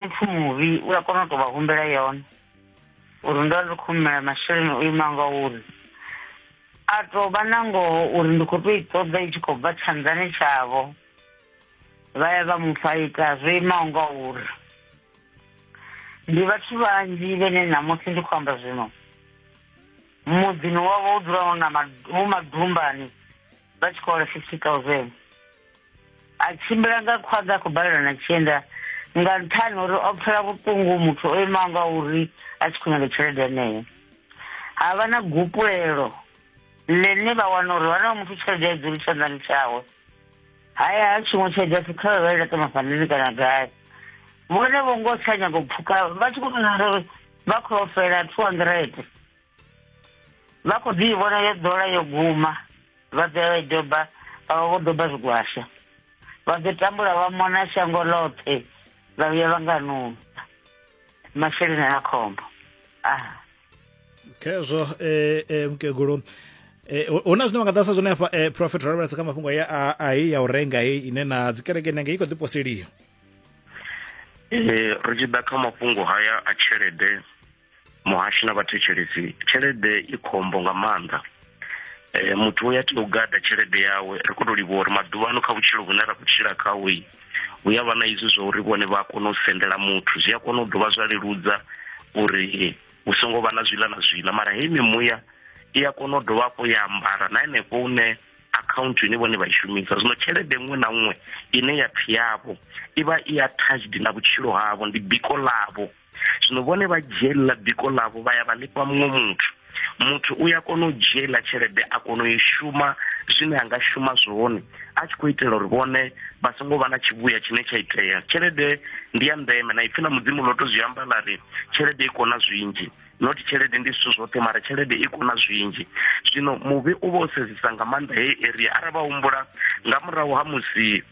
muthu muvhi u a kona u tou vha humbela yone uri ndo ndi khou humela masheleni o ima nga uri a tou vha na ngoho uri ndi khou tou i ṱoḓa i tshi khou bva tshanḓani tshavho vha ya vha mufha ita zwo imaho nga uri ndi vhathu vhanzhi vhene ṋamusi ndi khou amba zwino muḓini wavho u dzula hu na hu madumbani vha tshi khou hola fifty thousand a tshimbila nga khwaḓa a khou balelwa na tshienda nga nṱhani uri o pfela vhuṱungu muthu o imaho nga uri a tshi khou nyaga tshelede yeneyo ha vha na gupulelo ḽine vha wana uri vhana vha muthu tshelede ya dzuli tshanḓani tshawe haya ha tshiṅwe tshelede ya sikha vha i laṱa mafhandini kana gai vhone vho ngo tsha nyago pfhuka vha tshi khou tonaa uri vha khou ofela two hundred vha khou ḓi vhona yo ḓola yo guma vha ḓoya vha i doba vha vha vho doba zwigwasha vha ḓo tambula vha mona shango ḽoṱhe vha vhuya vha nga nunza masheleni a khombo aha khezwo um eh, eh, mukegulu Eh, hu na zwine vha nga ḓasa zwone hafha eh, profet ro lavhelesa kha mafhungo ya ai ya u renga hei ine na dzikereke nenge i khou ḓiposeliwa eh, ri tshi ḓa kha mafhungo haya a tshelede muhashi na vhathetshelesi tshelede i khombo nga maanḓa um muthu uya tea u gada tshelede yawe ri khou to livhuwa uri maḓuvha ano kha vhutshilo vhune ra khou tshila khaho i hu ya vha na izwi zwa uri vhone vha a kona u sendela muthu zwi a kona u dovha zwa leludza uri hu songo vha na zwiḽa na zwiḽa mara heyi mimuya i a kona u dovha hafho ya ambara na henefho une account ine vhone vha i shumisa zwino tshelede nngwe na nngwe ine ya pfi yavho i vha i attached na vhutshilo havho ndi biko ḽavho zwino vhone vha dzhiela biko ḽavho vha ya vha ḽifha muṅwe muthu muthu u ya kona u dzhiela tshelede a kona u i shuma zwine a nga shuma zwone a tshi khou itela uri vhone vha songo vha na tshivhuya tshine tsha itea tshelede ndi ya ndeme na ipfi na mudzimu ḽo to zwi amba ḽa ri tshelede i kona zwinzhi not tshelede ndi zwithu zwoṱhe mara tshelede i kona zwinzhi zwino muvhi u vha o sedzisa nga maanḓa heyi area arali vha humbula nga murahu ha musi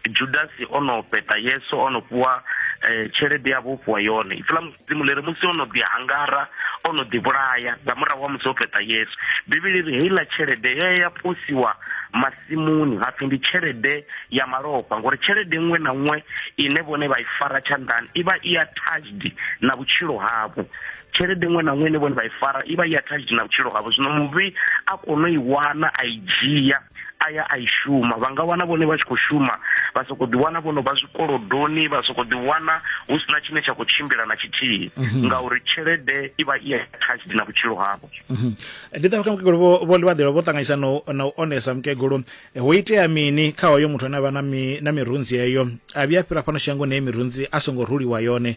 judasi o no peta yesu o no fhiwa um tshelede ya vho fhiwa yone ipfi ḽa mudzimu ḽi ri musi o no ḓi hangara o no ḓi vhulaya nga murahu wa musi o peta yesu bivhili ri heiḽa tshelede ye ya posiwa masimuni ha pfi ndi tshelede ya malofha ngori tshelede nngwe na nngwe ine vhone vha i fara tshanḓani i vha i attached na vhutshilo havho tshelede nngwe na nngwe ine vhone vha i fara i vha i attached na vhutshilo havho zwino muvhi a kono i wana a i dzhia a ya a i shuma vha nga wana vhone vha tshi khou shuma vha soko ḓi wana vhono vha zwikolodoni vha soko ḓi wana hu sina tshine tsha khou tshimbila na tshithihi mhm. ngauri tshelede i vha i attached na vhutshilo havho mhm. ndi ṱavha kha mukegulu vho vho ḽivhaḓelo vho ṱanganyisa no na u onesa mukegulu eh, ho itea mini kha hoyo muthu ane a vha na mi na mirunzi yeyo a vhuya fhira fhano shangoni ye mirunzi a songo ruliwa yone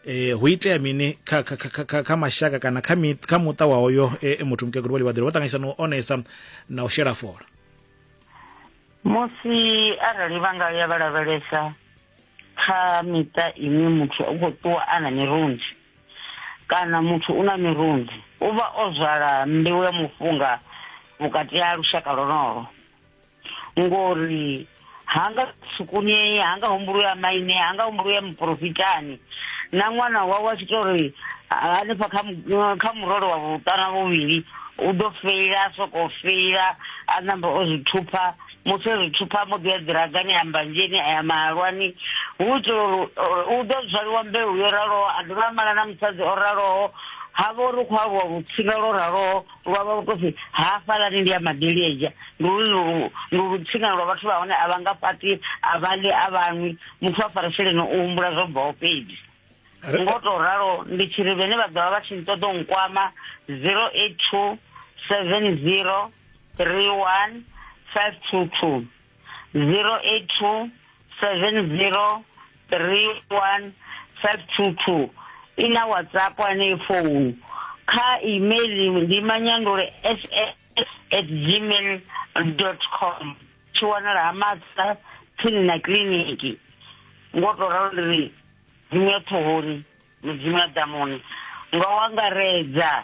eh hu itea mini kha kha kha kha mashaka kana kha kha muṱa wa hoyo e, e muthu mukegulu vha livhaḓelo vha ṱanganyisa na u onesa na u shela fola musi arali vha nga ya vha lavhelesa kha miṱa ine muthu u khou ṱuwa a na mirunzi kana muthu u na mirunzi u vha o zwala mbeu ya mufunga vhukati ha lushaka lonolo ngori hanga sukunei hanga humbulu ya maine hanga humbulu ya muprofitani na ṅwana wawe a tshi to ri hanefha kha murole wa vhuṱana vhuvhili u ḓo feila a sokou feila a namba o zwi thupha musi o zwi thupha mbo ḓi ya ḓiragani ya mbanzheni a ya mahalwani hu itela uri u ḓo zwaliwa mbeu yo raloho a dovha a mala na musadzi o raloho ha vha uri khou aluwa vhutsila lwo raloho wa vha vhukosi hafhalani ndi ya madelieja ndi ulu ndi ulu tsingana lwa vhathu vha hone a vha nga fhati a vha ḽi a vhanwi muthu wa farisheleni u humbula zwo bvaho fhedzi ngo to ralo ndi tshiri vhene vha ḓovha vha tshi nṱoḓa nkwama 082 70 31 522 082 70 31 522 i na whatsapp anei founu kha email ndi manyandule ss at gmail dot com tshi wanala ha matsa tsini na kiliniki ngo to ralo ndi ri dzimu ya ṱhohoni mudzimu ya ḓamuni nga wangaredza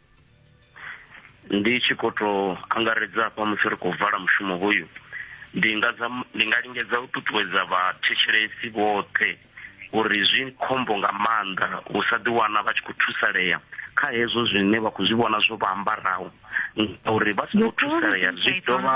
ndi tshi khou tou angaredza hafha musi ri khou vala mushumo hoyu ndi nga ndi nga lingedza u ṱuṱuwedza vhathetshelesi vhoṱhe uri zwi khombo nga maanḓa u sa ḓiwana vha tshi khou thusalea kha hezwo zwine vha khou zwi vhona zwo vha ambaraho ngauri vha songo thusalea zwi dovha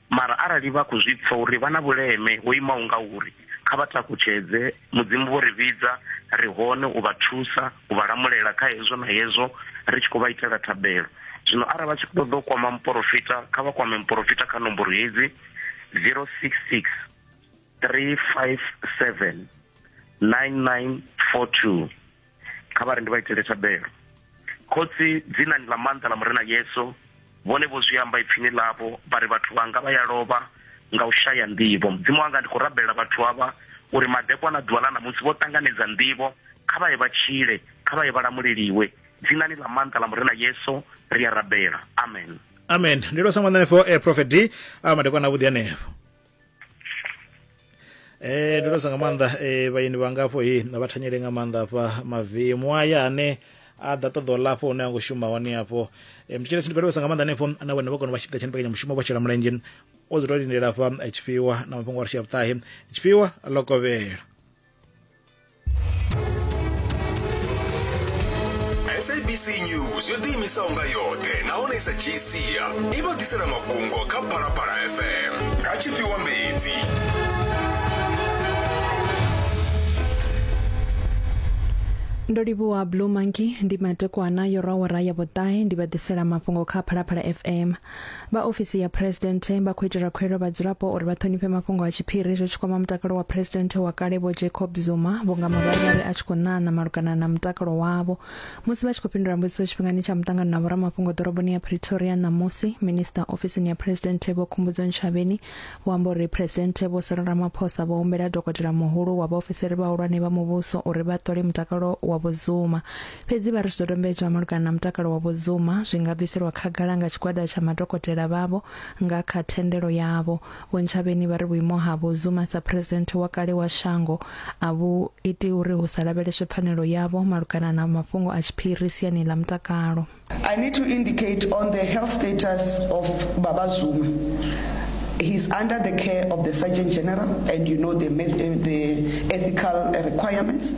Mara arali vha khou zwi pfa uri vha na vhuleme ho imaho ngauri, kha vha takutshedze. Mudzimu vho ri vhidza, ri hone u vha thusa, u vha lamulela kha hezwo na hezwo, ri tshi khou vha itela thabelo. Zwino arali vha tshi ṱoḓa u kwama muporofita, kha vha kwame muporofita kha nomboro hedzi, 066 357 9942. kha vha ri ndi vha itele thabelo khotsi dzinani ḽa maanḓa ḽa murena yesu vhone vho zwi amba ipfini ḽavho vha ri vhathu vhanga vha ya lovha nga u shaya nḓivho mudzimu wanga ndi khou rabelela vhathu avha uri madekwana a ḓuvha ḽa ṋamusi vho ṱanganedza nḓivho kha vha ye vha tshile kha vha ye vha lamuleliwe dzinani ḽa maanḓa ḽa murena yesu ri a rabela amen amen ndi lwa sa ṅwana henefho eh, prophet d a madekwana avhuḓi henefho eh ndo sa nga maanḓa eh vhaeni vhangafho he na vha thanyele nga maanḓa hafha mavemu aya ane a ḓa ṱoḓa u lafho hune a ngo shuma hone afho eh, mutshitshele sindi vhalisa nga maanḓa hanefho na vhone vha kona vha tshifhinga tsha mbekanya mushumo vha shela mulenzhe o dzula lindela hafha eh, tshifhiwa na mafhungo a ri tshia vhuṱahe tshifhiwa ḽo kovhela sabc news yo ḓiimisaho nga yoṱhe nahone sa gcia i vha ḓisela mafhungo kha phalaphala fm nga tshifhiwa mbedzi ndo livhuwa blue monkey ndi madekwana yo rawara ya vhuṱahe ndi vha ḓisela mafhungo kha phalaphala fm vha ofisi ya president vha khou itela khuelo vhadzulapo uri vha ṱhonifhe mafhungo a tshiphiri zwi tshi kwama mutakalo wa president wa kale vho jacob zuma vhunga mavharivhari a tshi khou ṋaṋa malugana na mutakalo wavho musi vha tshi khou fhindula mbudziso tshifhingani tsha muṱangano na vhoramafhungo ḓoroboni ya pretoria ṋamusi minista ofisini ya president vho khumbudzo nshavheni vho amba uri president vho sala ramaphosa vho humbela dokotela muhulu wa vhaofisiri vhahulwane vha muvhuso uri vha ṱole mutakalo wa vhozuma fhedzi vha ri zwidodombedzwa malugana na mutakalo wa vhozuma zwi nga bviselwa khagala nga tshigwada tsha madokotela vhavho nga kha thendelo yavho vho ntshavheni vha ri vhuimo ha vhozuma sa phuresidennde wa kale wa shango a vhu iti uri hu sa lavheleswe pfanelo yavho malugana na mafhungo a tshiphiri siani ḽa mutakalo I need to indicate on the health status of Baba Zuma. He's under the care of the Surgeon General and you know the, the ethical requirements.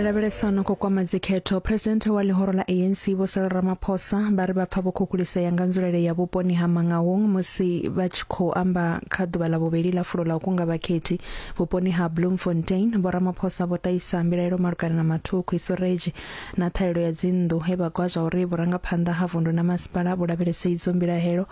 re lavhelesano khou kwama dzikhetho presidenthe wa ḽihoro ḽa anc vho sala ramaphosa vha ri vha pfa vho khukhulisea nga nzulele ya vhuponi ha mangawong musi vha tshi khou amba kha ḓuvha ḽa vhuvheli ḽa fulo ḽa u kunga vhakhethi vhuponi ha bloemfontein vho ramaphosa vho ṱahisa mbilaelo malugana na mathukhu isoreji na ṱhahelelo ya dzinnḓu he vha gwa zwa uri vhurangaphanḓa ha vundu na masipala vhu lavhelese idzo mbilahelo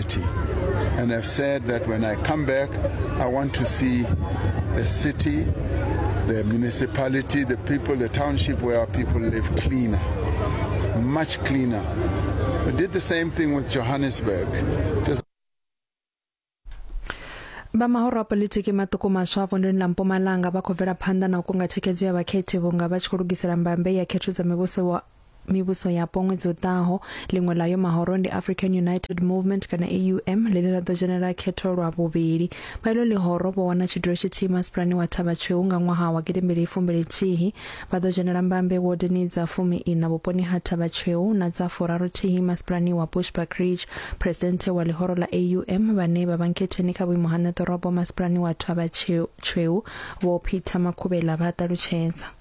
city. And I've said that when I come back, I want to see the city, the municipality, the people, the township where our people live cleaner, much cleaner. We did the same thing with Johannesburg. Just vha mahoro a politiki maṱuku maswa vondoni ḽa mpumalanga vha khou bvela phanḓa na u kunga thikhedzo ya vhakhethi vhunga vha tshi khou lugisela mbambe ya khetho dza mivhuso mivhuso yapo ṅwedzi u ḓaho ḽiṅwe ḽa yo mahoro ndi african united movement kana aum ḽine ḽa ḓo dzhenela khetho lwa vhuvhili vha ilo ḽihoro vho wana tshidulo tshithihi masipulani wa thavha tshweu nga ṅwaha wa gidimbili ifumbili thihi vha ḓo dzhenela mbambe wodini dza fumi ina vhuponi ha thavha tshweu na dza furaru thihi masipulani wa bushback ridge presidente wa ḽihoro ḽa aum vhane vha vha nkhetheni kha vhuimo ha neḓorobo masipulani wa thavha tshweu vho peter makhubela vha ṱalutshedza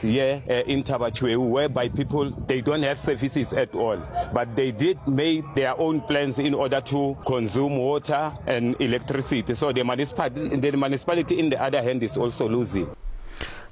here uh, in Tabachueu, whereby people they don't have services at all, but they did make their own plans in order to consume water and electricity. So the municipality, the municipality in the other hand is also losing.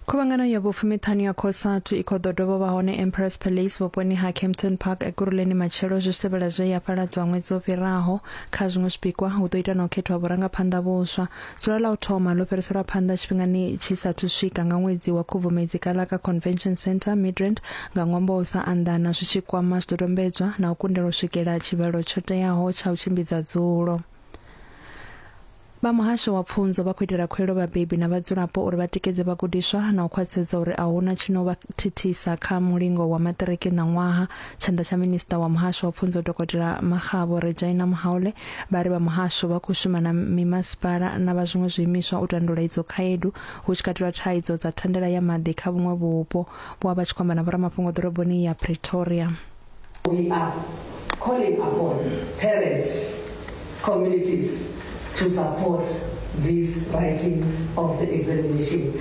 khuvhangano ya vhupfumiṱhanu ya khosatu i khou ḓo dovha vha hone empress palace vhuponi ha campton park ekuruleni matshelo zwi sevhela zwe ya fhaladzwa ṅwedzi o fhiraho kha zwiṅwe zwipikwa hu ḓo ita na u khethwa vhurangaphanḓa vhuswa dzula ḽa u thoma ḽo fhiriselwa phanḓa tshifhingani tshi sathu swika nga ṅwedzi wa khubvumedzi kala kha convention center midrand nga ṅwambo wa u sa anḓana zwi tshi kwama zwidodombedzwa na u kundela u swikela tshivhalo tsho teaho tsha u tshimbidza dzulo vha muhasho wa pfunzo vha khou itela khuelo vhabebi na vhadzulapo uri vha tikedze vhagudiswa na u khwaṱhisedza uri a huna tshi no vha thithisa kha mulingo wa maṱiriki ṋaṅwaha Tshanḓa tsha minista wa muhasho wa pfunzo dokotela Magabo Rejaina Muhaule vha ri vha muhasho vha khou shuma na mimasipala na vha zwiṅwe zwiimiswa u tandula idzo khaedu hu tshi katelwa thaidzo dza thandela ya maḓi kha vhuṅwe vhupo. Vho vha vha tshi khou amba na vhoramafhungo ḓoroboni ya Pretoria. We are calling upon parents, communities to support this writing of the examination.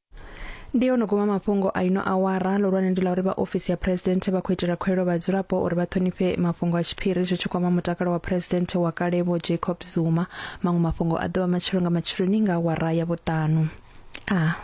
ndi yo no guma mafhungo a ino awara lohulwane ndi la uri vha ofisi ya phuresidennde vha khou itela khwelo vhadzulapo uri vha ṱhonifhe mafhungo a tshiphiri zwi tshi kwama mutakalo wa phuresidennde wa kale vho jacob zuma maṅwe mafhungo a ḓovha matshelo nga matsheloni nga awara ya vhuṱanu a ah.